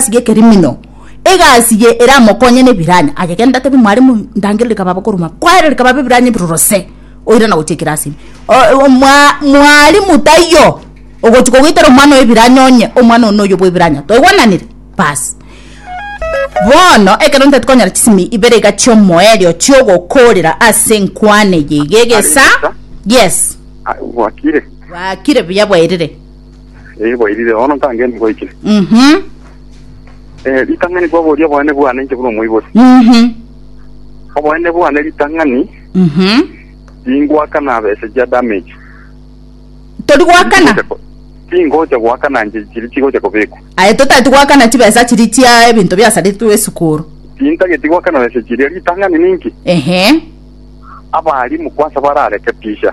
egasi gekerimino, egasi eye eramokonye na ebiranya. Aye genda atebi mware mu ndangere rikaba bokoruma kware rikaba bebiranya ebiruruse oira na gochia ekirasi ime. O- o- mwa- mwalimu taiyo ogochia kogoitera omwana oyo ebiranya onye omwana one oyo bwebiranya toigwananire basi bono ekero ntati konyora chisimi ibere iga chiomoerio chiogokorera ase enkwana eye iga egesa yes Aye, gwakire gwakire buya bwairire Eh, bwairire, bono nkangende ngoiche. Mhm. Eh, ritang'ani kwaboria obonene bwane inche buna omoibori. Mhm. Obonene bwane ritang'ani, Mhm. tingwakana bese chia damage. Tori gwakana. Tingocha gwakana nje chiri chigocha kobekwa. Aye totati gwakana chibesa chiri chia ebinto biasaritwe esukuru. Tintageti gwakana bese chiria ritang'ani ninki? Ehe. Abarimu kwansa bararekebisha.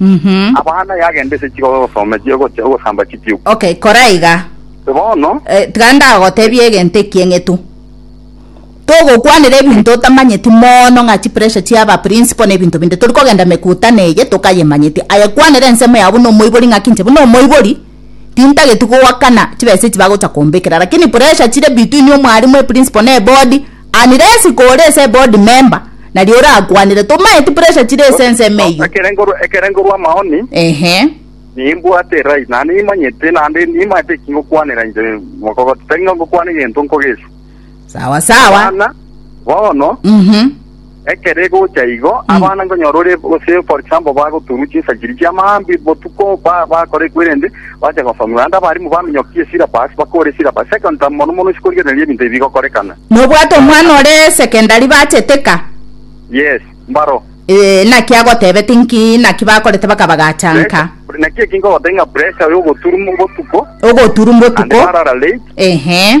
Mhm. Abana yagenda ase chigogo gosoma echi- ogocha- ogosamba chitiku. Okay, kora iga. Bono, Eh, tiga ndagotebie egento eki eng'etu togokwanera ebinto otamanyeti mono ng'a chipressure chiaba principal na ebinto binde tori kogenda mekutano eye tokayemanyeti aye kwanera ensemo yao buna omoibori ng'aki inche buna omoibori tintageti goakana chibesa echi bagocha kombekera lakini pressure chire between omwarimu eprincipal na ebodi Unless kore ase board member nario orakwanire tomaeti pressure chire ase ensemo eyio. Ekere ngorwa amaoni. Ehe. Nimbwate erai na nimanyete naende nimanyete eki ngokwanera inche mogogoti tari ngokwana egento nkogeswa. Sawa sawa. Bana bono. Mhm. Ekero egocha igo, abana nkonyora ore gose for example bagoturwa chinsachiri chia maambia botuko ba- bakora ekwerende, bacha gosomia naende abarimu baminyokia esyllabus bakore esyllabus second term mono mono sikorigereria ebinto ebi bigokorekana. Nobwate omwana ore secondary bacheteka? Yes, mbaro. Eh, naki agotebeti nki naki bakorete bakabagaachanka? Pressure- Naki eki nkogotebia ng'a pressure ya ogoturwa botuko, Ogoturwa naende botuko. barara late, Ehe.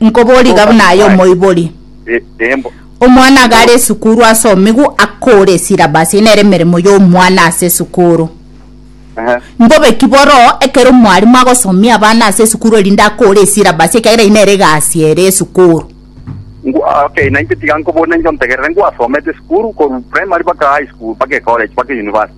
Nkobori iga buna aye omoibori omwana iga are esukuru ase omigu akore esilabasi eye nere emeremo ya omwana ase esukuru mbobe ki boro ekero omwalimu agosomia abana ase esukuru erinde akore esilabasi ekiagera eye nere egasi ere esukuru okay nainche tiga nkobori nainche ontegerere ngwasomete esukuru korwa primary mpaka high school mpaka ecollege mpaka university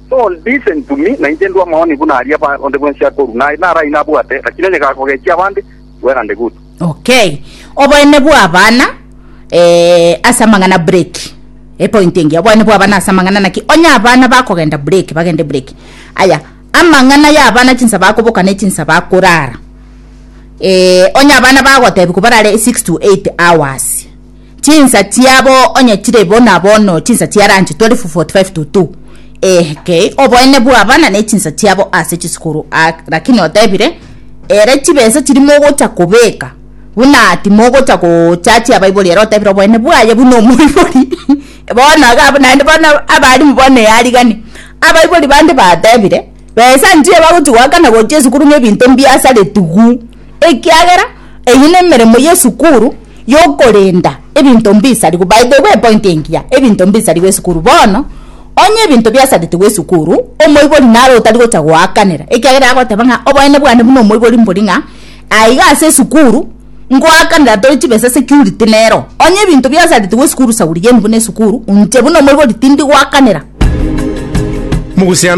Don't listen to me, nainche ndue amaoni buna aria ba onde bwensi akorua, naye narai nabwate, lakini onye gakogechia abande, well and good. Okay. Oboene bwa abana eh, ase amang'ana break. Epoint engiya. Oboene bwa abana ase amang'ana naki onye abana bakogenda break, bagende break. Aya, amang'ana ya abana chinsa bakoboka ne chinsa bakorara. Eh, onye abana bagotebi kobarare 6 to 8 hours. chinsa chiabo onye chire bo na bono chinsa chia rancho 12:45-2 eke oboene bw'abana ne chinsa chiabo ase chisukuru a- lakini otebire ere chibesa chiri mogocha kobeka buna timogocha gochachia abaibori ere otebire oboene bwaye buna omoibori bono iga abwo naende bono abalimu bono eyarigani abaibori bande batebire besa nchiyo bagochi goakana gochia esukuru ng'a ebinto mbiasaretigwe. ekiagera eyio nemeremo yesukuru yokorenda ebinto mbisariwe by the way point engiya ebinto mbisariwe esukuru bono onye ebinto biasaritigwe esukuru omoibori naro otari gocha goakanera ekiagera agoteba ng'a oboene bwane buna omoibori mbori ng'a aiga ase esukuru ngoakanera tore chibesa security nero onye ebinto biasaritigwe esukuru shauri yenu buna esukuru inche buna omoibori tindi goakanera. Mogusiano.